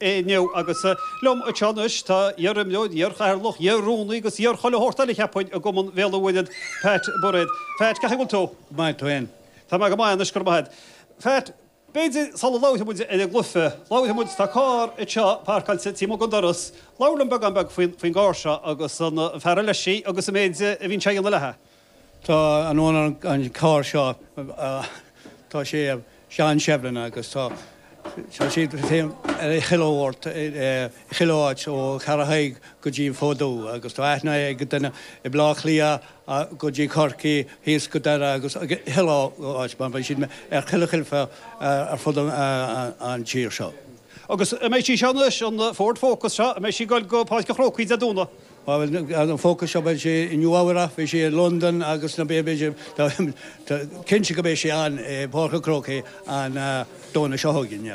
inniu agus liom anseo anois tá iar-imreoir, iar-chathaoirleach, iar-rúnaí agus iar-chuile shórt eile cheapfainn i gCumann Bhéal an Mhuirthead, Pat Bairéad. Phat, cén chaoi a bhfuil tú? Go maith, tú féin? Tá mé go maith anois, go raibh maith agat. Phat, b'fhéidir sula labhraíonn muid ar an gcluiche, labhraíonn muid, tá carr anseo parcáilte taobh amuigh den doras, labhair liom beagán beag faoin gcarr seo agus an fear ar leis í agus an méid a bhíonn sé a dhéanamh léithi. Tá an-aithne ar an carr seo. Tá sé Seán Seibhleáin agus tá sé féin ar a chilliobhailt i chuile áit ó Cheathrú Thaidhg go dtí an Fód Dubh agus tá aithne ag daoine i mBlá Cliath go dtí Corcaigh thíos go Doire agus i chuile áit mar beidh siad ar chuile chluife ar fud an tír seo. Agus an mbeidh sí seo anois, an Ford Focus seo, an mbeidh sí ag goil go Páirc an Chrócaigh Dé Domhnaigh? Má bhí an Focus seo, bhí sé i Nua-Eabhrac, bhí sé i Londain agus na Bé, b'fhéidir, tá cinnte go mbeidh sé ann i bPáirc an Chrócaigh an Domhnach seo chugainn.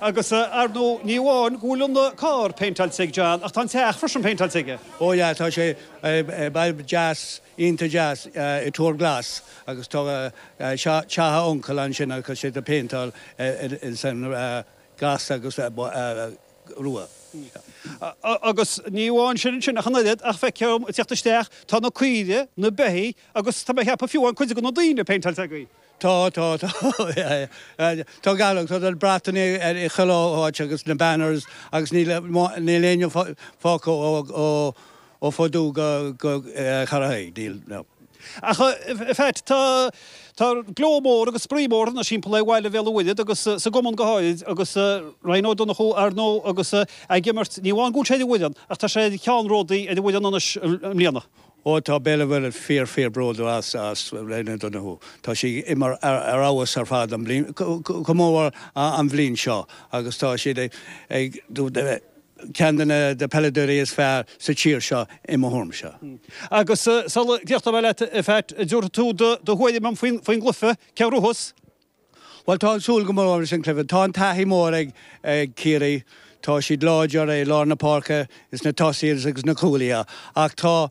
Agus ar ndóigh, ní amháin go bhfuil an carr péinteáilte ag John ach tá an teach freisin péinteáilte aige. Ó yeah, tá sé i bhfad deas, iontach deas, i Tuar Glas agus tá teach a uncail ansin agus tá sé péinteáil san ghlas agus. Rua. Agus ní amháin sin ansin ach an oiread ach feictear dom ag teacht isteach, tá na caoire, na beithígh agus tá mé ag ceapadh fiú cuid de na daoine péinteáilte agaibh. Tá, tá, tá. Tá go leor, tá na bratacha ar chuile áit agus na banners agus níl aon fágtha ó. ó Fód Dubh go Ceathrú Thaidhg, níl na. Ach, in fact, tá tá gleo mór agus spraoi mór anois thimpeall ar bhaile Bhéal an Mhuirthead agus sa gcumann go háirid agus Ryan Ó Donnchú, ar ndóigh, agus ag imirt, ní amháin go bhfuil sé ar an bhfoireann ach tá sé ina cheannródaí ar an bhfoireann anois i mbliana. Ó tá Béal an Mhuirthead fíor fíor bródúil as as Ryan Ó Donnchú. Tá sé ag imirt ar ar fheabhas ar fad an bhliain, go mór mór an bhliain seo agus tá siad ag ag ceann de na peileadóirí is fearr sa tír seo i mo thuairmse. Agus sula gcríochnóidh mé leat, a Pheait, an dtabharfaidh tú do do thuairim dom faoin gcluife, cé a ghnóthós? Bhuel, tá mé ag súil go mór leis an cluiche. Tá an taithí mór ag Ciarraí. Tá siad láidir i lár na páirce, is na tosaí agus na cúlaithe. Ach tá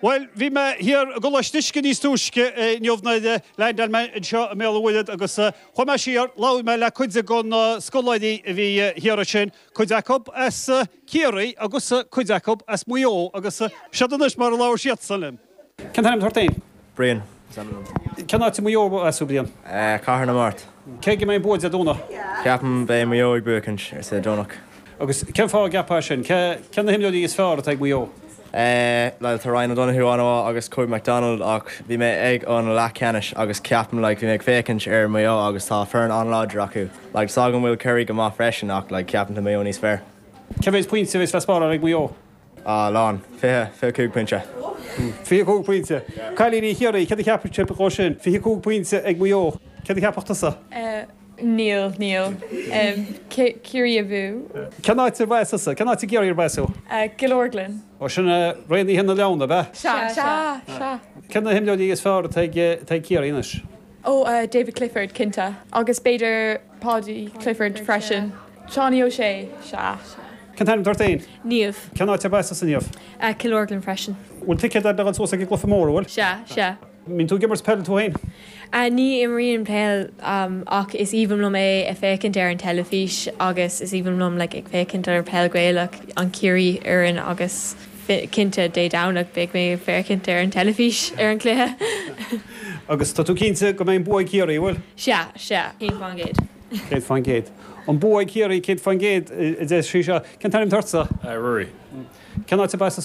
Bhuel, bhí mé thiar i gColáiste Uisce níos túisce inniu, nuair a landáil mé anseo i mBéal an Mhuirthead, agus chuaigh mé siar, labhair mé le cuid de na scoláirí a bhí thiar ansin, cuid acu as Ciarraí agus cuid acu as Maigh Eo, agus siod anois mar a labhair siadsan liom. Cén t-ainm atá ort féin? Brian. Cén áit arb as duit féin? Cathair na Mart. Cé ag a mbeidh bua Dé Domhnaigh? Ceapaim beidh Maigh Eo ag buacaint, ar an Domhnach. Agus cén fáth a gceapfá é sin? Cé na himreoirí is fearr atá ag Maigh Eo? Like, tá Ryan O'Donoghue an-mhaith agus Kobe McDonald ach bhí mé ag an leathcheannais agus ceapaim, like, bhí mé ag féachaint ar Maigh Eo agus tá foireann an-láidir acu. Like, is dóigh go bhfuil Kerry go maith freisin ach, like, ceapaim tá Maigh Eo níos fearr. Cé mhéid pointe a bheidh le spáráil ag Maigh Eo? A, lán. Fiche. Fiche cúig pointe. Fiche cúig pointe. Cailíní Chiarraí, céard a cheapfadh sibh dhe sin? Fiche cúig pointe ag Maigh Eo. Céard a cheapfadh tusa? A, níl. Níl. Ciarraí abú. Cén áit arb as tusa? Cén áit i gCiarraí arb as tú? A, Cill Orglan. Ó, sin Raonaithe na Leon, ab ea? Sea. Sea. Sea. Cé na himreoirí is fearr atá ag Ciarraí anois? Ó, David Clifford, cinnte. Agus b'fhéidir Paudie Clifford freisin. Seánie Ó Sé, sea. Cén t-ainm atá ort fhéin? Niamh. Cén áit arb as tusa, Niamh? Cill Orglan freisin. Bhfuil ticéad a'd le ghoil suas ag an gcluiche mór, an bhfuil? Sea, sea. Mbíonn tú ag imirt peil tú fhéin? Ní imrím peil ach is aoibhinn liom é a féachaint ar an teilifís agus is aoibhinn liom like ag féachaint ar peil Gaelach, an Ciarraí fhoireann agus. Cinnte, Dé Domhnaigh beidh mé ag féachaint ar an teilifís ar an cluiche. Agus tá tú cinnte go mbeidh an bua ag Ciarraí, an bhfuil? Sea, sea, céad fán gcéad. Céad fán gcéad. An bua ag Ciarraí, céad fán gcéad, a deir sí seo. Cén t-ainm atá ortsa? Ruairí. Cén áit arb as tusa.